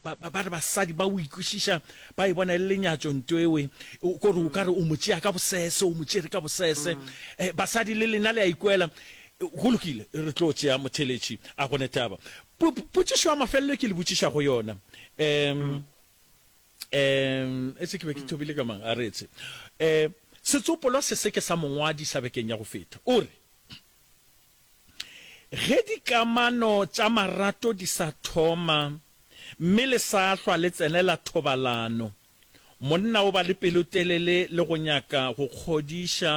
Ba, ba, ba re basadi ba o ikwešiša ba e bona e le lenyatšo nto ewe, o, kore o ka re o mo tšea ka bosese, o mo tšere ka bosese. Eh, basadi le lena le a ikwela. Eh, Go lokile, re tlo tšea motheletši, a go ne taba. Po, po, potšišo ya mafelelo e ke le botšiša go yona, em, em, etse ke be ke thobile ka mang, a re etse. Eh, setsopolwa se se ke sa mongwadi sa bekeng ya go feta, o re, Ge dikamano tša marato di sa thoma mme le sa hlwa le tsenela thobalano, monna o ba le pelotelele le go nyaka go kgodiša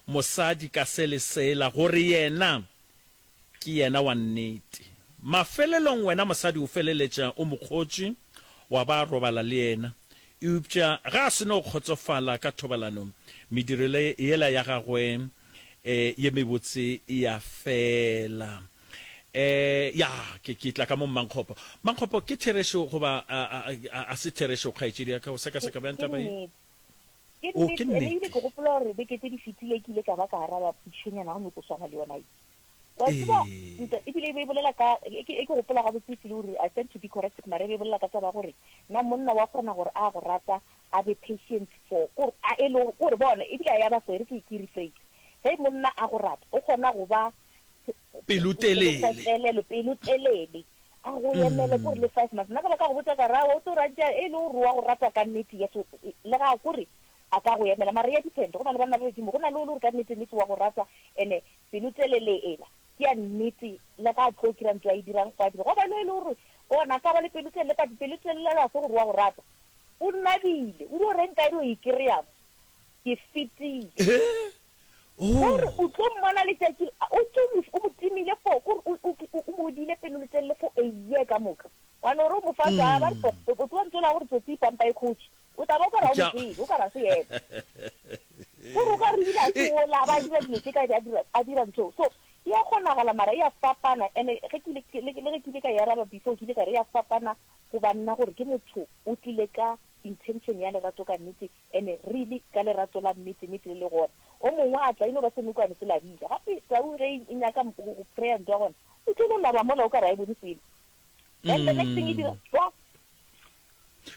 mosadi ka se le sela gore yena ke yena wa nnete. Mafelelong wena mosadi o feleletša o mo kgotše wa ba robala le yena. Eupša ga a se no kgotsofala ka thobalanong, mediro yela ya gagwe e, ye mebotse e ya fela. E, ya, ke, ke tla ka mo Mmankgopo. Mmankgopo, ke therešo goba a, a, a, a se therešo kgaetšedi ya ka? O sekaseka bjang taba ye? O, ke nnete. Ke gopola gore beke tse di fetile ke ile ka ba ka araba putšhonyana gomme ko swana le yona ye. Wa tseba, Ee. ntwa e bile e be e bolela ka, e ke, e ke gopola gabotse e felo gore, I stand to be corrected, mara e be e bolela ka taba ya gore, na monna wa kgona gore a go rata, a be patient for, ko re, a e le, ko re, bona, e bile a ya ba so, e re ke, ke rephrase, ge monna a go rata, o kgona go ba, Pelotelele. Pelotelele, pelotelele, a go emele, ko re, le five months. Nna ka ba ka go botša ka re, aowa, o tlo reng tša, e le gore wa go rata ka nnete, yes, o, e, le ga a, ko re, a ka go emela, mara e ya depend, go na le banna ba badimo, go na le o le gore ka nnete-nnete wa go rata, ene, Pelotelele ela ke ya nnete le ga a tlo kira ntwa e dirang fa dilo. Gobane e le gore ona ka ba le pelotelele but pelotelele ga se gore wa go rata. O nabile. O dio reng ka dio e kry-a mo? Ke fetile. Gore o tlo mmona letšatši le o tlo mo o mo timile for ke gore o o o mo odile pelotelele for a year ka moka. Wa no re o mo fa ntwa a ba re pop o tlo ntsola gore tsotsi ipampa e kgotši. O tla ba o ka ra o motsebe, o ka ra se epa. Gore o ka re ebile a se ola, a ba a dira dilo tše ka be a dira ntho. So, e a kgonagala, mara e a fapana. And-e le ge ke ile ka e araba before, ke ile ka re e a fapana go ba nna gore ke motho o tlile ka intention ya lerato ka nnete, and-e really ka lerato la nnete-nnete le le gona. O mongwe a tla, e no ba senokwane se labile. Gape tau ge e nyaka go prayer ntwa gona, e tlo no laba mola o ka re ga e bone selo. Then the next thing e dira, tswa!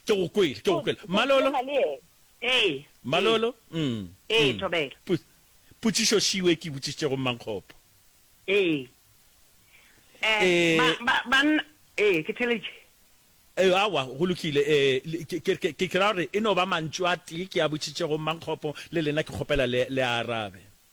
Ke go kwele, ke go kwele. Malolo? Ee. Malolo? Umm. Ee, Thobela. Pu, putšišo šio e ke e botšišitšego Mmankgopo. Ee. Ba, ba, banna, ee, ke theletše. Ee, aowa, go lokile. Ee, ke, ke, ke, ke ra gore e no ba mantšu a tee ke a botšišitšego Mmankgopo, le lena ke kgopela le, le a arabe.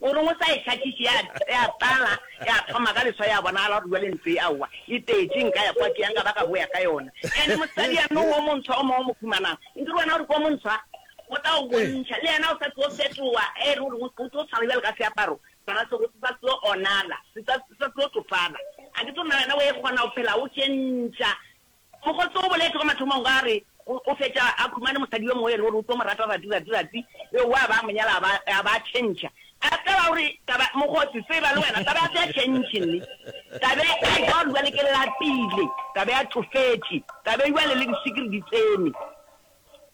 O reng o sa e hlakiše? Ya, ya tlala, ya thoma ka leswa, ya bonagala gore bjale ntlo e, aowa, e tletše. Nka ya kwa ke yang ka ba ka boya ka yona. And mosadi ya nou wo montsho o mongwe o mo humanago, nke re wena o re ke wo montsho, a? O tla o bontšha. Le yena o sa tlo fetoga. E re o reng o tlo, o tlo tshwana bjale ka seaparo sona se, se sa tlo onala, se sa, se sa tlo tšofala. A ke tsebe na wena o e kgona go phela o tšentša. Mokgotse o boletše ka mathomong a re o fetša a khumane mosadi yo mongwe yena o re o tlo mo rata ratsi ratsi ratsi yo wa ba a mo nyala a ba a tšhentšha a tseba gore taba mokgotse tseba le wena taba ya se ya tšhentšhe nne tabe a ja gore jwale ke lapile tabe ya tšofetše tabe jwale le disikiri di tsene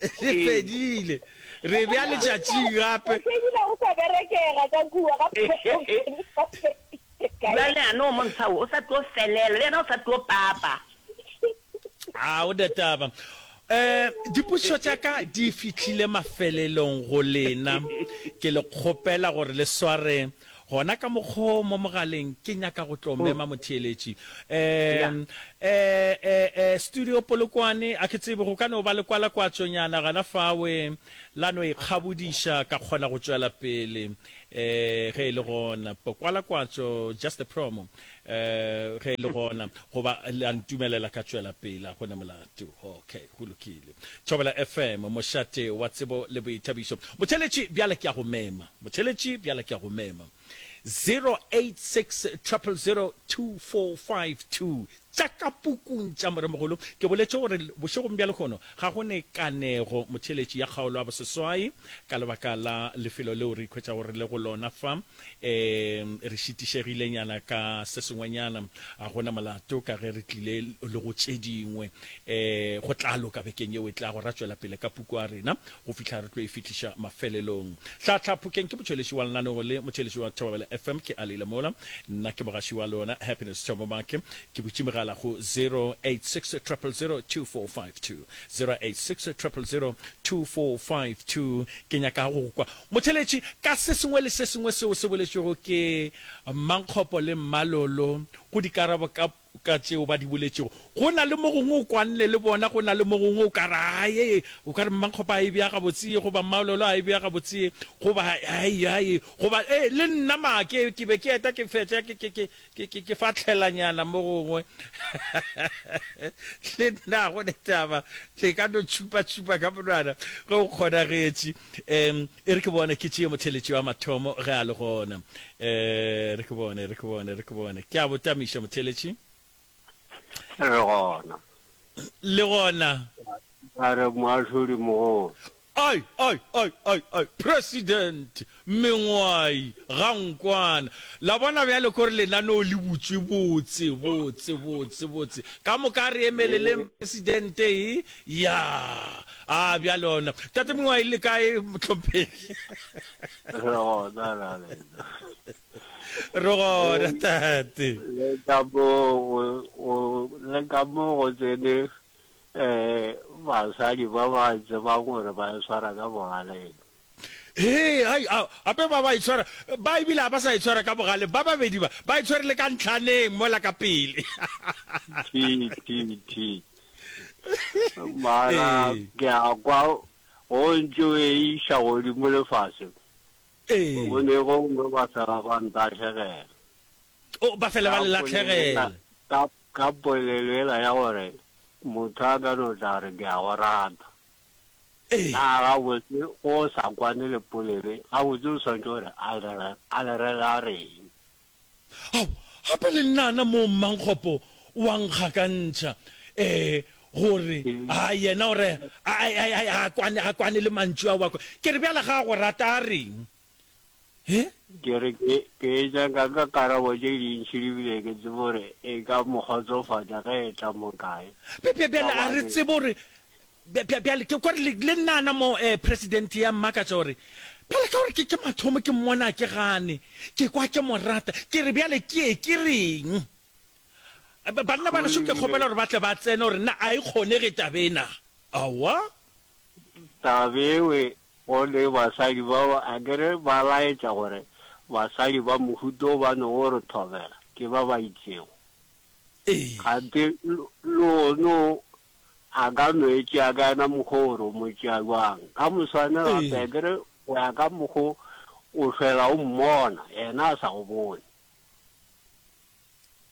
Re fedile. Re bea letšatšing gape. O fedile go sa berekega ka kua ga Bjale a no mo ntsha o, o sa tlo felela le yena o sa tlo papa. A o na taba. Um, dipušo tša ka di fihlile mafelelong go lena. Ke le kgopela gore le sware Gona ka mokgo mo mogaleng ke nyaka go tlo mema motheeletši. Um, eh, eh, eh, Studio Polokwane, a ke tsebe go ka no ba lekwalakwatšonyana gana fawe la no ikgabodiša ka kgona go tšwela pele, eh, ge e le gona. Pokwalakwatšo, just a promo, eh, ge e le gona, goba le a ntumelela ka tšwela pele, a gona molato. Okay, go lokile. Thobela FM, mošate wa tsebo le boithabišo. Motheeletši, bjale ke a go mema. Motheletši, Bjale ke a go mema. 0860002452 tša ka pukung tša Moremogolo. Ke boletše gore bošegong bja lehono ga go ne kanego, motheletši, ya kgaolo ya boseswai ka lebaka la lefelo leo re ikhwetšago re le go lona fa. Ee, re šitišegilenyana ka se sengwenyana. Ga go na molato ka ge re tlile le go tše dingwe. Ee, go tla loka bekeng yeo e tlago. Ra tšwela pele ka puku ya rena. Go fihla re tlo e fihliša mafelelong. Hlahla Phokeng ke motšweletši wa lenaneo le motšweletši wa Thobabela FM. Ke a le ile mola. Nna ke mogaši wa lona, Happiness Tshomo Make. Ke butše megala go 0860002452, 0860002452. Ke nyaka go go kwa, motšweletši, ka se sengwe le se sengwe seo se boletšwego ke Mmankgopo le Mmalolo go dikarabo ka ka tšeo ba di boletšego. Go na le mo gongwe o kwanne le bona, go na le mo gongwe o ka re, Ae, o ka re, Mmakgopa a e bea gabotsee, goba Mmaololo a e bea gabotsee, goba, Ae, ae, goba, Ee, le nna ma ke, ke be ke eta ke fetša ke, ke, ke, ke, ke, ke fatlhelanyana mo gongwe. Le nna, ga go na taba, le ka no tšhupatšhupa ka monwana ge go kgonagetše. Um, E re ke bone, ke tšee motheletši wa mathomo ge a le gona. E re ke bone, e re ke bone, e re ke bone. Ke a bo tamiša, motheletši. E re gona. Le gona. A re, Moahlodi mogolo. Ai, ai, ai, ai, ai, President, mengwai, ga nkwana. La bona bjale kore lenaneo le butšwe botse, botse, botse, botse. Ka moka a re emeleleng, President, e, Ya, a bja lona. Tate Mongwai, le kae, Mohlomphegi? Re gona na le nna? Re gona, Tate. Le ka mo go, go, le ka mo go tsene, eh, basadi ba ba tsebang gore ba swara ka bogaleng. Hee, hai, ao, gape ba ba e tshwara, ba e bile ga ba sa e tshwara ka bogale, ba babedi ba, ba e tshwere le ka ntlhaneng mola ka pele. Thi, thi, thi. Mara, Ee. ke a kwa, go ntše o e iša godimo le fase, Ee. go ne gongwe ba fela ba ntahlagela. O, ba fela ba le latlhegela. Ka, ka polelo yela ya gore, motho a ka no tla re, ke a go rata. Ee. Naa gabotse go sa kwane le polele? Gabotse o swanetše gore a le re, a le re la reng? Ao, gape le nnana moo mmankgopo wa nkga ka ntšha, ee, gore, a yena o re, a, a, a, a, a kwane, a kwane le mantšu ao a kwa. Ke re, Bjale ga a go rata a reng? He? Ke re ke, ke etša ka ka karabo tše dintši di bile ke tsebe gore e ka mo kgotsofatša ge e tla mo kae. Bj, bj, bjale a re tsebe gore, bj, bj, bjale ke kwa re le, le nna ana mo, eh, Presidente ya mmakatša gore, bjale ka gore ke, ke mathomo ke mmona a ke gane, ke kwa ke mo rata, ke re bjale ke ye ke reng? Ba, banna ba gašo ke kgopela gore ba tle ba tsene gore na a e kgonege taba ena. Aowa. Taba eo Gote basadi bao a ke re ba laetša gore basadi ba mohuta wo ba no o re thobela ke ba ba itšego. Ee. Kganthe lehono a ka no e tšea ka yena mokgwa o gore o mo tšea bjang. Ka moswane gape a ke re go ya ka mokgwa o o fela o mmona, yena a sa go bone.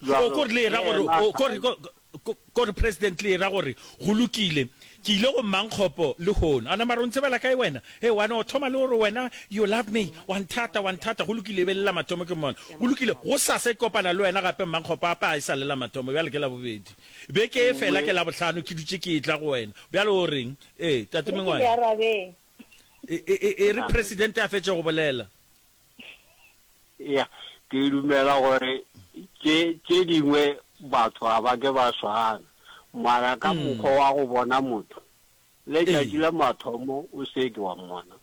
Bjalo, O kore le era le gore, yena o kore, ko, ko, kore President le era gore, go lokile, ke ile go Mmankgopo lehono. A nama a re, O ntsebela kae wena? Hee, wa no thoma le o re wena, you love me, wa nthata, wa nthata. Go lokile, e be le la mathomo ke mmona. Go lokile, gosasa ke kopana le wena gape, Mmankgopo, a pa e sa le la mathomo, bjale ke Labobedi. Beke e fela ke Labohlano, ke dutše ke etla go wena. Bjale o reng? Ee, Tate Re se le Mengwaya. arabeng. E, e, e, e re President a fetše go bolela. Ya, ke dumela gore tše tše dingwe batho ga ba ke ba swana, mara ka mokgwa wa go bona motho, letšatši la mathomo o se ke wa mmona,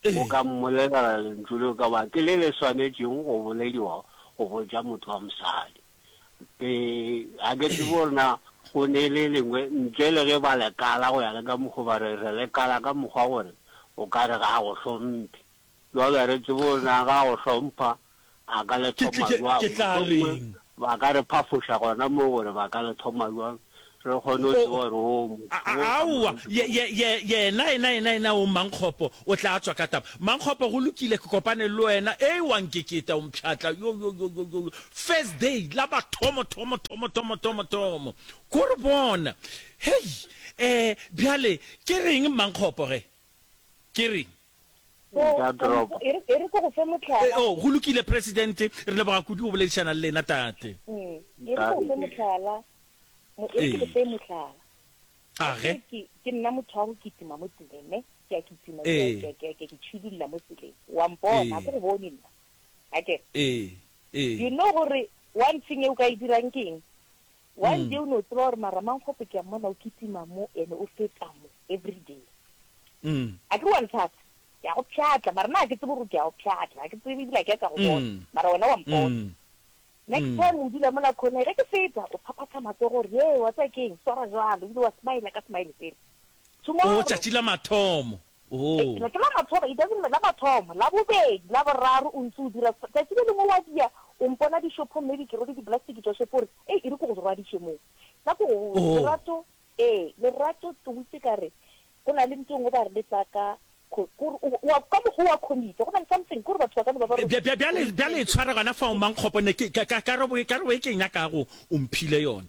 o ka mmolelela lentšu leo ka ba ke le le swanetšego go bolediwa go botša motho wa mosadi. Ke, ga ke tsebe gore na go ne le lengwe ntle le ge ba lekala go ya le ka mokgwa ba re re lekala ka mokgwa gore o ka re ga a go hlomphe. Babereki bona ga go hlompha a ka le thoma jwang? Mohlomongwe ba ka re phafoša gona moo gore ba ka le thoma jwang re kgone go tseba gore o motho wo ka moka. Yena, yena, yena, yena o Mmankgopo o tla tswa ka taba. Mmankgopo, go lokile, ke kopane le wena. Ee, wa nkeketa, o mpšhatla. Yo, yo, yo, yo, yo, yo. First day, la mathomo, thomo, thomo, thomo, thomo, thomo. Ko re bona. Hei! Eh, bjale, ke reng, Mmankgopo, ge? Ke reng? Nka drop. E re ke go fe mohlala. Oh, go lokile, Presidente. Re leboga kudu go boledišana le lena, Tate. E re ke go fe mohlala. E re ke go fe mohlala. Age. Ke nna motho wa go kitima mo tseleng, ne? Ke a kitima, ke a ke tšhidulla mo tseleng. Wa mpona, a ke go bone nna. Akere? You know gore one thing e o ka e dirang ke eng? One day o no tseba gore mara Mankgopo ke a mmona o kitima mo ene o feta mo everyday. A ke re wa nthata? Ke a go pšhatla mara nna ga ke tsebe gore ke a go pšhatla, ga ke tsebe ebile ga ke a ka go bona mara wena wa mpona. Next time o dula mola corner ge ke feta o phaphatha matsogo gore yee wa tseba ke eng swara jwalo ebile wa smile-a ka smile sele. Tomorrow. O tšatši la mathomo. Hei, ke ne ke la mathomo, it doesn't la mathomo, la bobedi, la boraro, o ntse o dira, tšatši le lengwe wa diya, o mpona dishopong, maybe ke rwele diplastiki tša shopo, o re, Hei, e re ke go rwadiše mo. Ka ko go, Lerato, ee, Lerato, ke witše ka re, go na le ntho e nngwe ba re le tla ka, ko re, o, wa, ka mokgwa wa committee, go na le something, ko re batho ba ka no ba ba re. Bjale, bjale e tshwara gona fao, Mankgopo, ne ke, ka, ka, ka re, ka re, ke nyaka go, o mphile yona,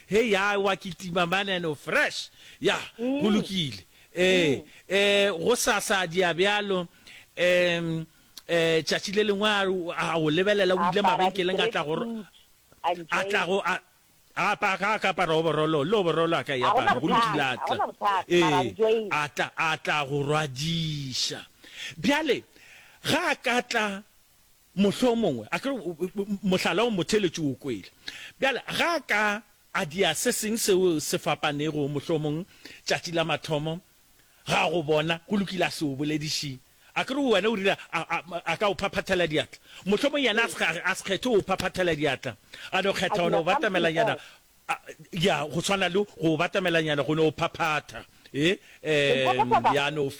Hei ya wa kitima maneno fresh ya go lokile ee ee go sa sa dia bjalo em eh tšatši le lengwe a go lebelela o ile mabenkeleng a tla go a tla go a a pa ka ka para o borolo lo borolo a ka ya para go lokile a tla ee a tla a tla go rwadisha bjale ga ka tla Mohlomongwe a ke mohlala o motheeletši o kwele. Bjale, ge a ka a dia se sengwe seo se fapanego, mohlomong, tšatši la mathomo, ga go bona, go lokile, a se o bolediše. A ke re wena o rile a, a, a ka o phaphathela diatla. Mohlomongwe yena a se, a se kgethe go o phaphathela diatla. A no kgetha go no o batamelanyana, a, ya, go swana le go o batamelanyana, go no o phaphatha. E, e, ya no.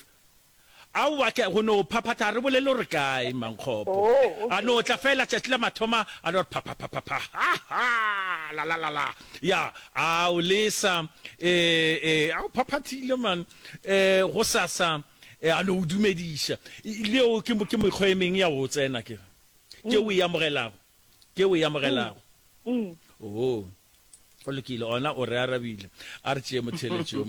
Aowa hle, go no phaphatha ga re bolele o re kae, Mmankgopo. A no tla feela tšatši la mathoma a no re phaphaphapha, ha-ha, la-la-la-la. Ya, a o lesa, e-e, a o phaphathile man, e, gosasa, e, a no o dumediša. Le yeo ke, ke mekgwa e meng ya go o tsena, ke re, tšeo o e amogelago. ke o e amogelago mm. oo go lokile ona o re arabile a re tšee motheletši yo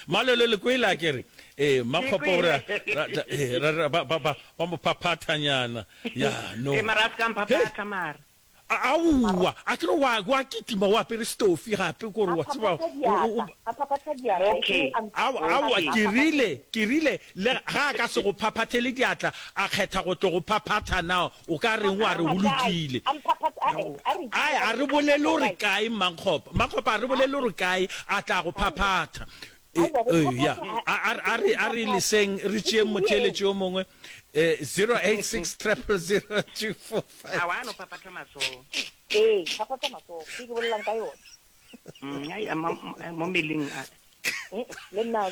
malelo le kwele a kere ee makgopo gore eh, ba mo phaphathanyana ya no aowa a kere wa kitima o apere stofi gape kore wa tseba aowa kerile kerile le ga a ka se go phaphathele diatla a kgetha go tlo go phaphatha nao O ka reng wa re go lokile? A a re bolele o re kae Mmakgopa. Mmakgopa a re bolele o re kae a tla go phaphatha. Eya, a re leseng re tšeeng motheeletši yo mongwe 086 000 245. Aowa a no phaphatha matsogo. Ee, phaphatha matsogo. Ke ke bolelang ka yona. Mo mmeleng a. Le nna.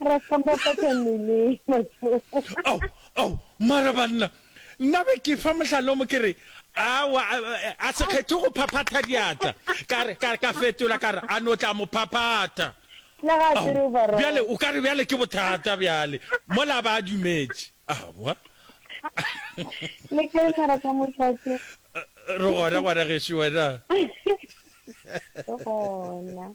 Ra hlomphapatša mele matsogo. Ao, ao, mara banna, nna be ke fa mohlala o mo ke re, Aowa, a, a, a se kgethe go phaphatha diatla. Ka re, ka, ka fetola ka re, A no tla mo phaphatha. Le ga a Ao, tsere overall. bjale o ka re bjale ke bothata bjale, mola a ba a dumetše. Aowa. Le kae mara ka mošate? Re gona, ngwana gešo, wena. Re gona.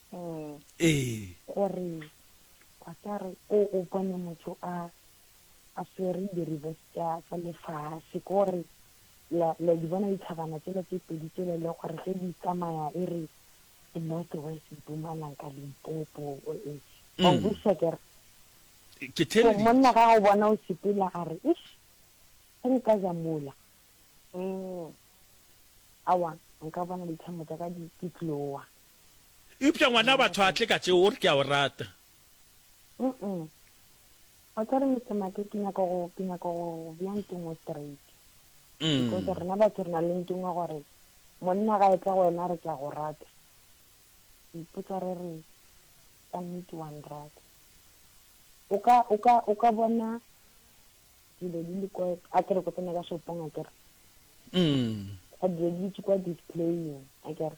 gore ba tla re o o bone motho a a swere diribo tsa tsa lefase ko re la la di bona dithabana tsela tse pedi tsela le gore ge di tsamaya e re north west mpumalang ka limpopo o e o busa ke ke tell you monna ga o bona o sepela a re ish se nka ja mola mm awa nka bona dithamo tsa ka di tloa Eupša ngwana batho a tle ka tšeo, o re ke a o rata. Umm. O tla re Mister Make ke nyaka go, ke nyaka go go bea ntungwe straight. Because rena batho re na le ntungwe gore monna ga etla go wena a re ke a go rata, re ipotsa re re, ka nnete wa nrata? O ka, o ka, o ka bona dilo di le kwa, a ke re ko tsena ka shopong a ke re. Umm. Dilo di dutše kwa displaying a ke re.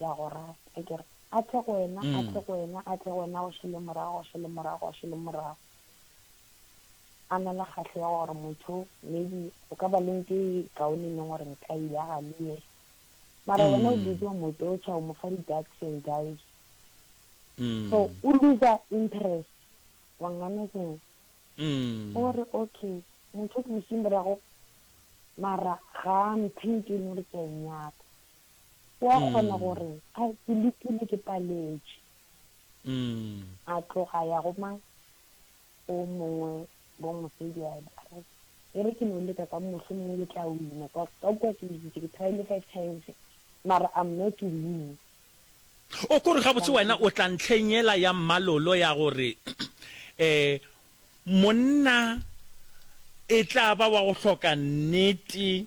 ya go rata, e ke re, A tle go wena, a tle go wena, a tle go wena, go šele morago, go šele morago, go šele morago. A na le kgahlo ya gore motho maybe go ka ba le nto e kaone e leng gore nka e yaga le ye, mara wena o busy o mo torture, o mo fa di-ducks and dives. So o looser interest, wa nganetšeng? O re, Okay, motho o ke mo šeng morago, mara ga a mphe nto e leng gore ke a e nyaka. o a kgona go re, A, ke letile, ke paletše. A tloga a ya go mang? Go o mongwe, go mosadi, a re, E re ke no leka ka, mohlomongwe ke tla wina, ka, ka kwa ke lekile, ke tried-ile five times, mara I'm not to win. O ko re gabotse wena o tla ntlheng yela ya mmalolo ya gore um monna e tla ba wa go hloka nnete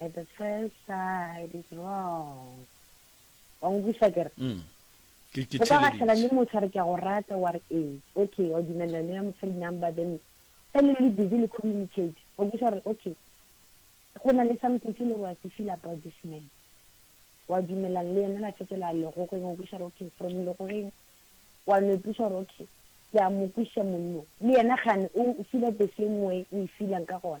At the first sight is wrong. Wa nkwiša ke re? Mm. Ke ke theleditše. O ka gahlana le motho a re ke a go rata wa re ee. Okay, wa dumelela nea mo phone number then ge le le busy le communicate wa nkwiša gore okay go na le something se le gore wa se feel about this man. Wa dumelana le yena la fetola legogeng wa nkwiša gore okay from legogeng wa no ipuša gore okay ke a mo kwiša monnong le yena gane o feela the same way o e feelang ka gona.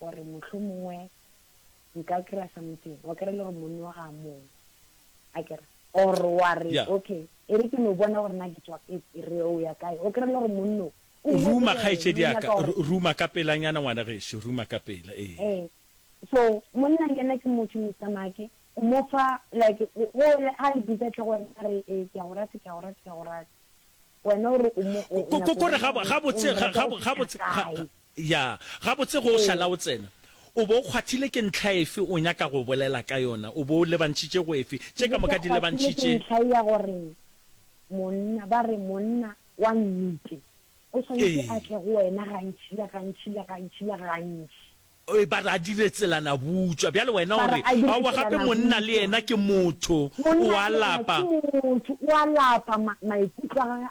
gore mohlomongwe nka kry-a something, wa kry-a e le gore monni wa ga a mong, a kere, or wa re, Yeah. okay, e re ke no bona gore na ke tswa, e e re o ya kae, wa kry-a e le gore monno o o ruma bolela, kgaetšedi o ya nyaka ka gore- Ru- ruma ka pelanyana ngwana gešo ruma ka pela ee Ee. So monna le yena ke motho Mister Make, o mo fa like o o le ha le bitsa tle go wena a re ee ke a go rata ke a go rata ke a go rata. Wena o re o mo o Ko- ko- nyaka ko re go bona ga- gore gabotse o mo ga- rata ga- go gabotse fihla ga- kae. Ya, gabotse ge o šala o tsena, o be o kgwathile ke ntlha efe o nyaka go bolela ka yona? O be o lebantšhitše go efe? Ke Tše be ka ke moka di kgwathile ke lebantšhitše. ntlha ya gore monna, ba re monna wa nnete o swanetše a Ee. tle go wena gantši le gantši le gantši le gantši. Ee, ba re a dire tselanabutswa. Bjale wena Ba o re re, a dire Aowa, gape monna le tselanabutswa. yena ke motho, o Monna a le yena lapa. ke motho, o a lapa, ma, maikutlo a gagwe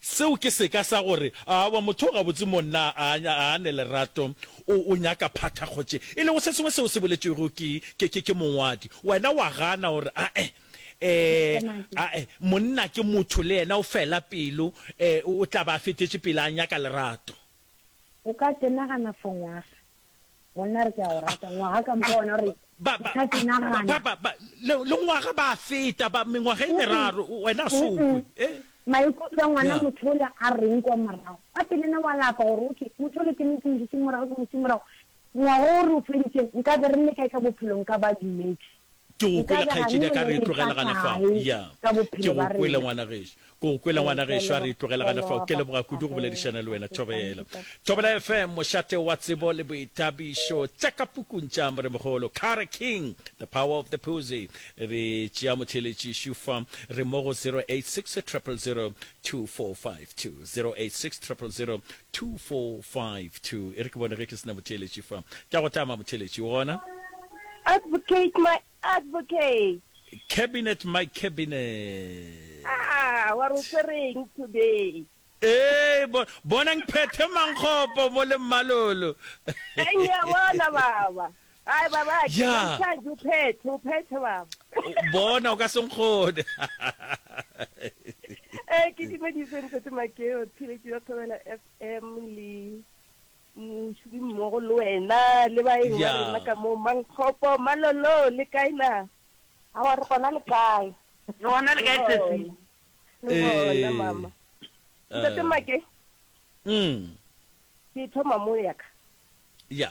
Seo ke seka sa gore, Aowa, motho o gabotse mo nna a a a ne lerato, o, o nyaka phathakgotše, e lego se sengwe seo se boletšwego ke, ke, ke, ke mongwadi. Wena wa gana, o re, A-e. Ee, a-e. Monna ke motho le yena, o fela pelo, ee, o, o tla ba a fetetše pele a nyaka lerato. O ka tenagana for ngwaga. Monna re ke a go rata. Ngwaga ka mpa wena re ka tenagana. Le ngwaga ba feta, ba mengwaga e meraro, wena a so kwe. Eh? Maikutlo a ngwana motho o le a reng kwa morago? Ka pele ne wa lapa gore, okay, motho o le ke ne ke mo dutše morago, ke mo dutše morago. Ngwaga o re o feditše, nka be re le kae ka bophelo? Nka ba dumedi. Ke go kwele kgaetšedi a ka re e tlogela gana fao. Ya. Ke go kwele ngwana gešo. Ke go kwele ngwana gešo a re e tlogela gana fao. Ke leboga kudu go boledišana le wena Thobela. Thobela FM, mošate wa tsebo le boithabišo. Tša ka pukung tša Moremogolo. Kare King, The Power of the Puzi. Re tšea motheeletši šufa. Re mo go 086 000 2452 086 0002452 e re ke bone ge ke sena motheeletši fa ke a go tama motheeletši o gona Advocate my advocate. Cabinet my cabinet. Ah, wa re o tshwereng today. Ee, bo, bonang phethe mankgopo mo le mmalolo. Eng ya bona baba. Ai babake, Ya. bontšhaje o phethe, o phethe baba. O- bona o ka se nkgone Eh, ke dumedise Ntate Makeo, tshireletso ya Thobela FM le mošomi mmogo le wena le baeng ba Ya. rena ka moo Mankgopo, Malolo le kae na? Awa re gona le kae? Re gona le kae sesi? Le gona Eh. mama. Ntate Eh. Make, Mm. ke thoma mo ya ka. ya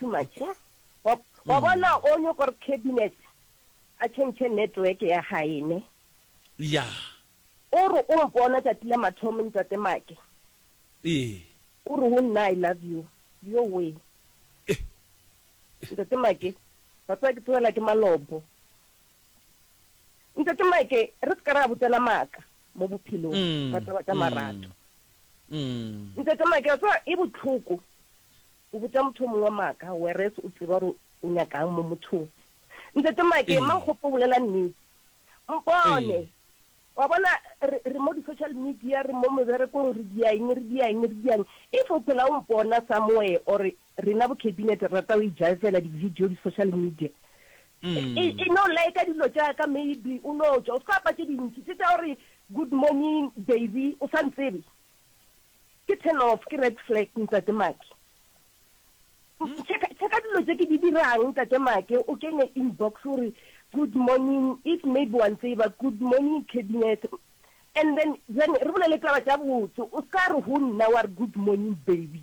Too much ya. Wa, wa bona o nyo gore cabinet a change network ya gae ne. Yeah. O re o mpona tšatši la mathomo ntate Make. Ee. O re ho nna I love you. Yo wee. Eh. Ntate Make, wa tseba ke tsogelwa ke malopo. Ntate Make, re se ka ra botsana maaka mo bophelong Mm, ka taba tša mm, marato. mm. Ntate Make, wa tseba e bohloko. O botša motho o mongwe maaka whereas o tseba gore o nyaka'ng mo mothong. Ntate Make, Mmakgopa o bolela nnete. Mpone. Wa bona, re, re mo di-social media, re mo meberekong, re dia'ng, re dia'ng, re dia'ng. If o phela o mpona somewhere, or rena bo Cabinet re rata go ijaefela di-video, di-social media, e, e no like-a dilo tša ka maybe o no tšwa. O se ka apa tše dintši, tše tša gore good morning baby, o sa ntsebe. Ke turn off, ke red flag Ntate Maki. Check-a check-a dilo tše ke di dirang Ntate Maki, o kenye inbox o re good morning, if maybe wa ntseba, good morning Cabinet, and then then re bolele taba tša botse, o se ka re ho nna wa re good morning baby.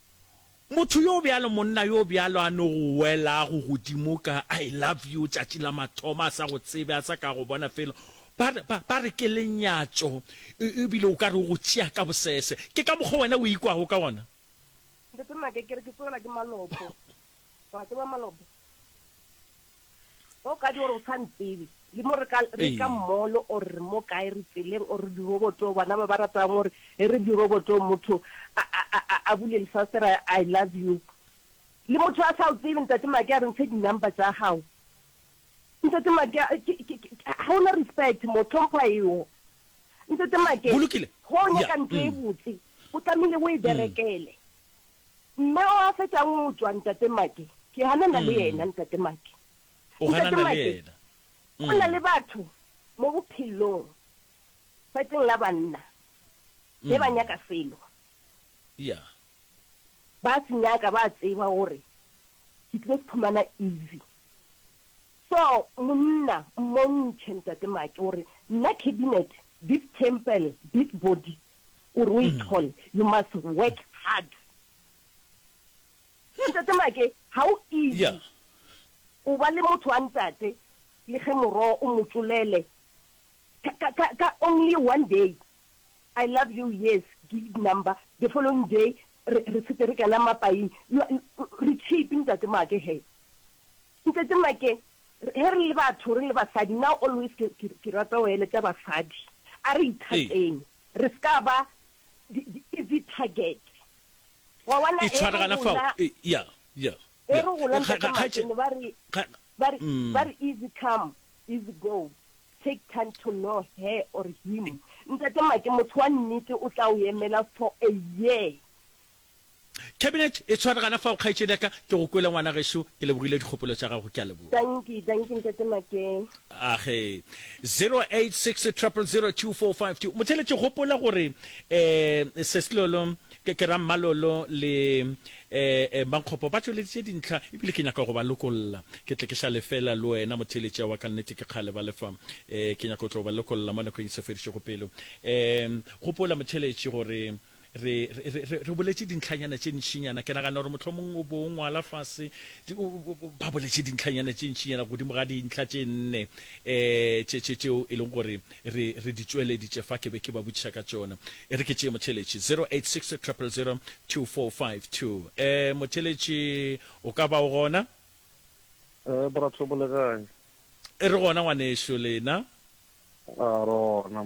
Motho yo bjalo, monna yo bjalo a no go welago godimo ka I love you tšatši la mathomo, a sa go tsebe, a sa ka go bona felo. Ba, ba, ba re ke lenyatšo, e, ebile o ka re o go tšea ka bosese. Ke ka mokgwa wena o ikwago ka wona. Ntate Maka, ke re ke tswelwa ke malopo. Wa tseba malope. O ka di gore o sa ntsebe. Le mo re ka re ka mall or re mo kae re tseleng or di roboto bana ba ba ratang gore e re di roboto motho a a a bule lefasera I love you. Le motho a sa o tsebe ntate Make a re ntshe di number tsa gago. Ntate Make ha ona respect mo tlhompha eo. Ntate Make ho nyaka ntho e botse o tlamehile o e berekele. Mme o a fetšang o tšwa, Ntate Make. Ke ganana le yena, Ntate Make. O ganana le yena. Go na le batho mo bophelong, fatšeng la banna, be ba nyaka selo. Ya. Ba se nyaka, ba tseba gore ke tlile se phumana easy. So, monna, mmontšhe, Ntate Make, gore nna cabinet, this temple, this body, gore o e thole, you must work hard. Hle Ntate Make, ha ho easy go ba le motho wa ntate le ge moroho o mo tšolele ka, ka, ka only one day, I love you, yes, give number, the following day re, re sete re kena mapaing. You are, re cheap Ntate Make he. Ntate Make, ge re le batho, re le basadi, now always ke, ke, ke rata go eletša basadi, a re ithateng, re se ka ba di, di easy target. Wa bona, e re gola, e re gola, Ntate Make, ne ba re, ba re, ba re easy come, easy go, take time to know her or him. Ntate Make, motho wa nnete o tla o emela for a year. Cabinet e tshware gana fao kgaetšedi ya ka ke go kwele ngwana gešo ke lebogile dikgopolo tša gago ke a leboga. Dankie dankie ntate Makeng. Age. 0860002452 Mothele ke gopola gore eh Seslolo ke ke Rammalolo le eh eh Mankgopo ba tšweleditše dintlha ebile ke nyaka go ba lokolla ke tle ke šale fela le wena Mothele tše wa ka nnete ke kgale ba le fa eh ke nyaka go tlo ba lokolla mo nakong e se fedišego pelo eh gopola Mothele tše gore Re, re, re, re, re boletše dintlhanyana tše ntšinyana. Ke nagana gore mohlomong o bo o ngwala fase. Di, o, o, o, ba boletše dintlhanyana tše ntšinyana godimo ga dintlha tše nne um tše, tše, tšeo e leng gore re, re di tšweleditše fa. Ke be ke ba botšiša ka tšona. E re ke tšee motheletši, 0860002452. Um motheletši, o ka ba o gona? Ee, Borathobo le kae? E re gona ngwanešu, lena? A, re gona.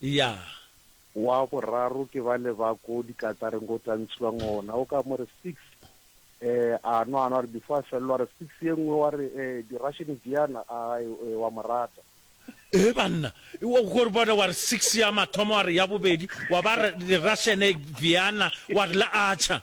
Ya. Wa boraro ke bale ba ko dikatareng ko tantshiwang ona o ka mo re six eh a nwa a nwa a re before a felelwa a re six ye nngwe wa re eh di russian diana a eh wa mo rata. Ee banna wa go reboda wa re six ya mathomo wa re ya bobedi wa ba re di russian diana wa re le acha.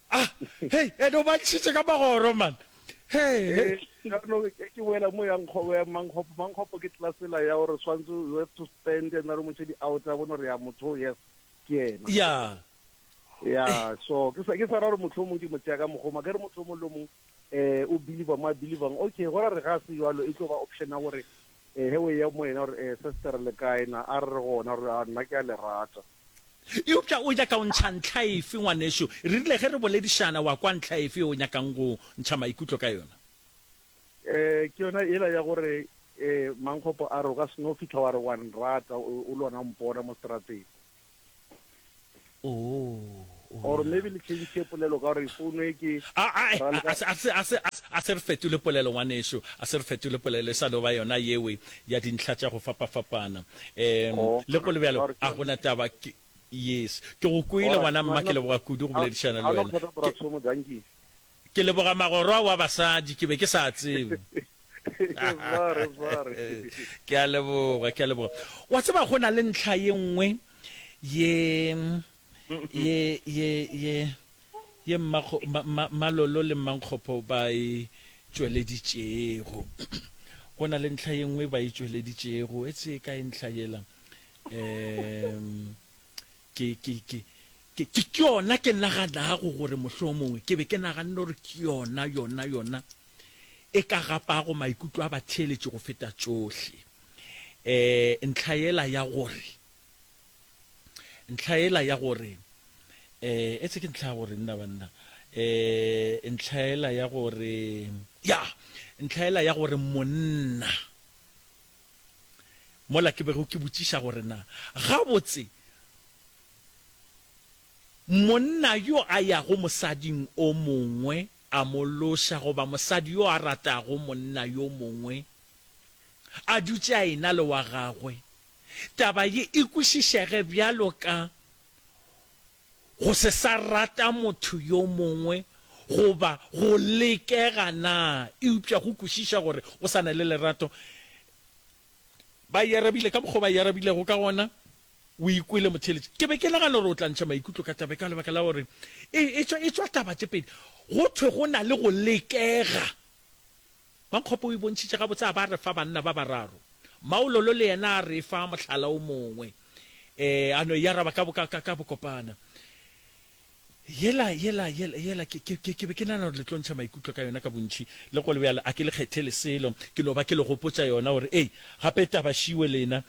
Ah, hey, ene o bantšhitše ka magoro, man. Hey, hey. Jaanong e ke boela mo yang kgobo ya mankgopo mankgopo ke tlasela ya gore swantse you have to spend and re motšhe di out a bone gore ya motho yes ke yena ya ya so ke sa ke sa ra gore motho o mongwe ke motšea ka mogoma ke re motho o mongwe le o mongwe um o believer mo a believang okay go ra re ga se jalo e tlo ba option ya gore Ee, ge o eya mo yena, o re, Ee, sestere, le kae na? A re re gona, o re, A nna ke a le rata. Eupša o nyaka go ntšha ntlha efe, ngwanešu? Re rile ge re boledišana, wa kwa ntlha efe yeo o nyakang go ntšha maikutlo ka yona? Ee, ke yona yela ya gore, ee, Mankgopo a re, o ka se no fihla wa re wa nrata o le gona go mpona mo seterateng. or maybe le change polelo ka gore founu e ke a se re fetole polelo ngwaneso a se re fetole polelo e sa no ba yona yewe ya dintlha tša go fapafapana um oh, le go le bjalo a gona taba ke yes ke go kwele ngwana mma ke leboga kudu go boledišana le wena Ke leboga magorwa wa basadi, ke be ke sa tsebe. Ke a leboga, ke a leboga. Wa tseba go na le ntlha ye nngwe ye, ye, ye, ye, ye mmakgo, ma, ma, Malolo le Mmankgopho ba e tšweleditšego. Go na le ntlha ye nngwe ba e tšweleditšego. Etse e kae ntlha yela? Um, ke, ke, ke, Ke, ke, ke yona ke naganago gore mohlomongwe ke be ke naganne gore ke yona, yona, yona e ka gapago maikutlo a batheeletši go feta tšohle. E, ntlha yela ya gore, ntlha yela ya gore, e, etse ke ntlha ya gore, nna banna, e, ntlha yela ya gore, ya, ntlha yela ya gore monna, Mola ke bego ke botšiša gore na gabotse monna yo a yago mosading o mongwe a mo loša goba mosadi yo a ratago monna yo mongwe a dutše a ena le wa gagwe, taba ye e kwešišege bjalo ka go se sa rata motho yo mongwe goba go lekega na? Eupša go kwešiša gore o sa na le lerato. Ba e arabile ka mokgwa o ba e arabilego ka gona, O e kwele motheeletši. Ke be ke nagana gore o tla ntšha maikutlo ka taba e ka lebaka la gore e, e, tšwa, e tšwa taba tše pedi. Go thwe go na le go lekega Pankgopo o e bontšhitše gabotse a ba a re fa banna ba bararo. Mmaololo le yena a re fa mohlala o mongwe, ee, a no e araba ka, ka, ka, ka bokopana. Yela, yela, yela, yela, ke, ke, ke, ke be ke nagana gore le tlo ntšha maikutlo ka yona ka bontši, le go le bjalo a ke le kgethele selo ke no ba ke le gopotša yona gore, ee, gape taba šiwe lena,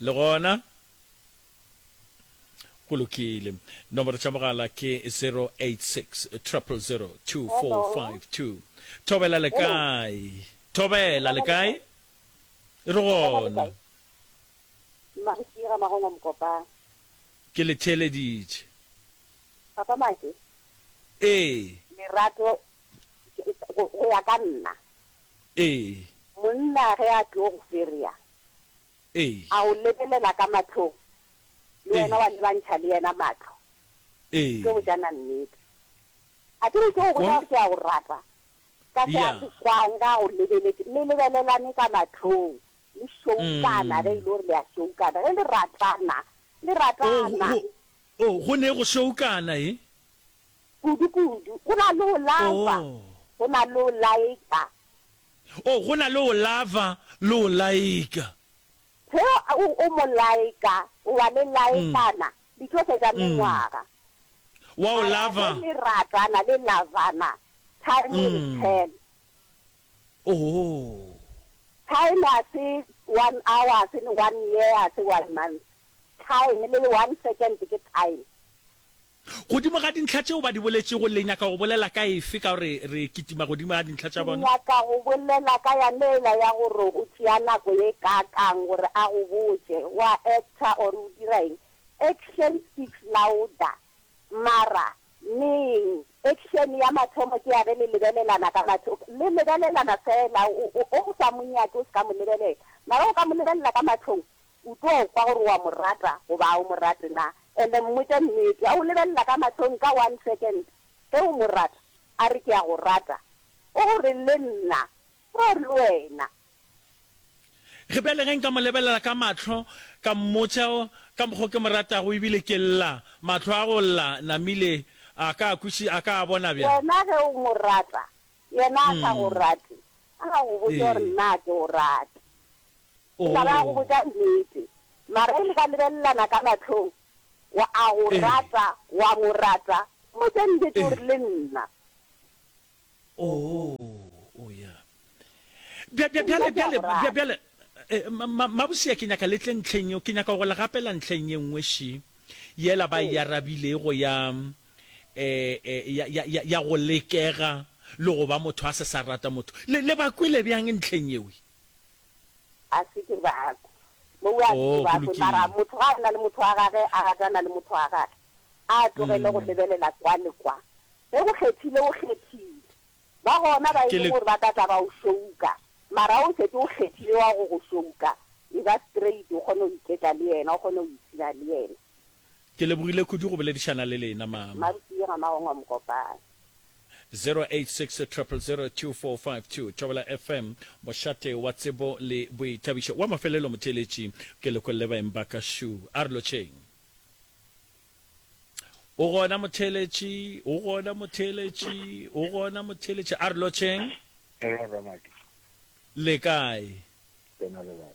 Le gona go lokile. Nomoro tša mogala ke 086 000 2452. Thobela le kae? Thobela le kae? Re gona. Mmasira Magongo Mokopane. Ke le theeleditše. Papa Make? Ee. Lerato go ya ka nna Ee. Monna ge a tlo go ferea, Ee. a go lebelela ka mahlong, le Ee. wena wa lebantšha le yena mahlo? Ee. Tlo botšana nnete. A ke re tlo go Go bolela n-. gore ke a go rata ka se a Ya. se kwang ge a go lebeletše? Le lebelelane ka mahlong, le šoukana ge e le Mm. gore le a šoukana. Ge le ratana, le Oh, go, ratana. go, oh, go ne go šoukana, e? Kudu-kudu. Go na le go lava, go na le go laika. Oh, go na le go lava le go laika. Ge o, o mo laika, wa le laikana, di tlo fetša mengwaga. Wa o Mara lava. ge le ratana, le lavana, time will tell. Oh. Time ga se one hour, ga se one year, ga se one month. Time, le one second ke time. Godimo ga dintlha tšeo ba di boletšego, le nyaka go bolela ka efe ka gore re kitima godimo ga dintlha tša Ke bona? nyaka go bolela ka ya Leila ya gore o tšea nako ye kaakang gore a go botše, o a actor or o dira eng? Action speaks louder. Mara, neng, action ya mathomo ke ya ge le lebelelana ka matlho, le lebelelana feela, o, o, o, o sa mo nyake o se ka mo lebelela. Mara o ka mo lebelela ka matlhong, O tlo kwa gore o a mo rata goba ga o mo rate na. And mmotša nnete. A o lebelela ka mahlong ka one second. Ge o mo rata, a re, Ke a go rata. O go re, Le nna. Or le wena. Ge bjale ge nka mo lebelela ka mahlo, ka mmotša ka mokgwa o ke mo ratago, ebile ke lla, mahlo a go lla, namile, a ka a kweši, a ka a bona bjang? Wena ge o mo rata, yena a sa go rate, a ka go botša gore, Nna a ke go rate. Ke tla ra go botša nnete. Mara e le ka lebelelana ka mahlong, wa a go rata, wa mo rata. Mpotše nnete o re le nna. Oo, o ya. Bja, bja, bjale, bjale, bja, bjale, ma, mabusea ke nyaka le tle ntlheng yeo. Ke nyaka go le gapela ntlheng ye nngwe še, yela ba e arabilego ya, eh, eh, ya, ya, ya, ya go lekega le go ba motho a se sa rata motho. Le, le ba kwele bjang ntlheng yeo? A se ke ba kwe. Mo o a se ke ba kwe. Mara motho ga a na le motho wa gage, a ratana le motho wa gage, a tlogele go lebelela kwa le kwa. Ge o kgethile, o kgethile. Ba gona ba e leng gore ba ka tla ba o šouka, mara ge o šetše o kgethile wa go go šouka, e ba straight, o kgone go iketla le yena, o kgone go ipshina le yena. Ke lebogile kudu go boledišana le lena, Mama. Mma Rupiwe ga Magongwa Mokopane. 0860002452 Thobela FM, Mošate wa tsebo le boithabišo. Wa mafelelo motheeletši ke lekwe le baeng ba ka šu. A re lotšheng. O gona motheeletši, o gona motheeletši, o gona motheeletši. A re lotšheng. Hello Ramadi. Le kae? Ke na le baka.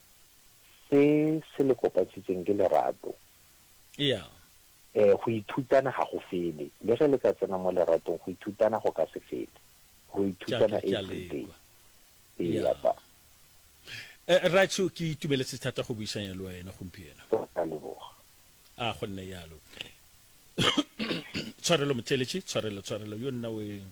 Se se le kopantšhitšeng ke lerato. Ea. Ee, go ithutana ga go fele. Le ge le ka tsena mo leratong, go ithutana go ka se fele. Ro ithutana everyday. Ea, ba. Rraetsho, ke itumeletse thata go buisanya le wena gompieno. Ke a leboga. A go nne yalo. Tshwarelo, Motšeletši. Tshwarelo, tshwarelo. Yo nna o eng?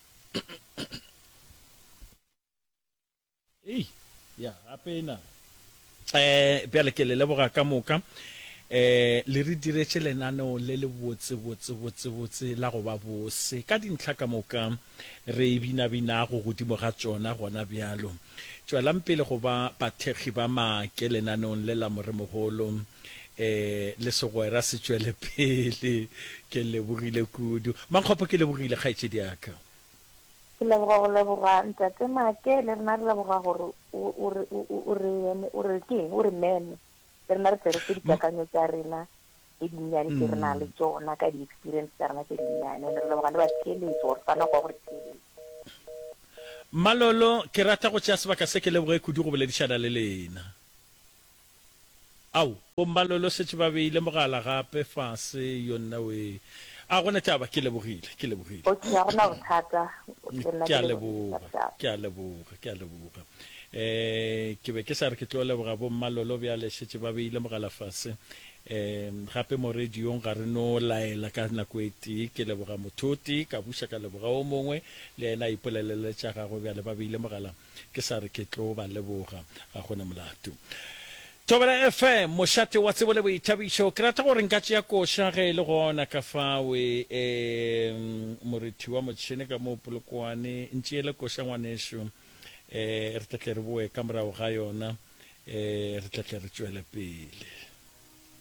Hei, ya gape e na. Ee, bjale ke le leboga ka moka. Ee, le re diretše lenaneo le le botse, botse, botse, botse la go ba bose ka dintlha ka moka re e binabinago godimo ga tšona gona bjalo. Tšwelang pele go ba bathekgi ba maake lenaneong le la Moremogolo. Ee, le segwera se tšwele pele. Ke lebogile kudu. Mankgopo, ke lebogile kgaetšedi ya ka. Ke leboga go leboga Ntate Make, le rena re leboga gore o re o re eme, o re ke eng, o re meme. Le rena re tle re fe dikakanyo tša rena tše dinnyane tše re nang le tšona ka di-experience tša rena tše dinnyane. And-e re leboga le batheeletšo gore ba nako ya go re theeletša. Mmalolo, ke rata go tšea sebaka se ke leboge kudu go boledišana le lena. Ao, bommalolo šetše ba beile mogala gape fase, yo nnawee. A gona taba, ke lebogile, ke lebogile. Okay, ga go na bothata, le nna ke lebogile, sharp, sharp. Ke a leboga, ke a leboga. E, ke be ke sa re ke tlo leboga bommalolo, bjale šetše ba beile mogala fase. E, gape mo radiong ga re no laela ka nako e tee. Ke leboga motho o tee, ka buša ka leboga o mongwe, le yena a ipolelela tša gagwe, bjale ba beile mogala. Ke sa re ke tlo ba leboga, ga go na molato. Thobela FM, mošate wa tsebo le boithabišo. Ke rata gore nka tšea koša ge e le gona ka fao. E, morethi wa motšhene ka moo Polokwane, ntšeele koša ngwanešu. E, re tla tle re boe ka morago ga yona. E, re tla tle re tšwele pele.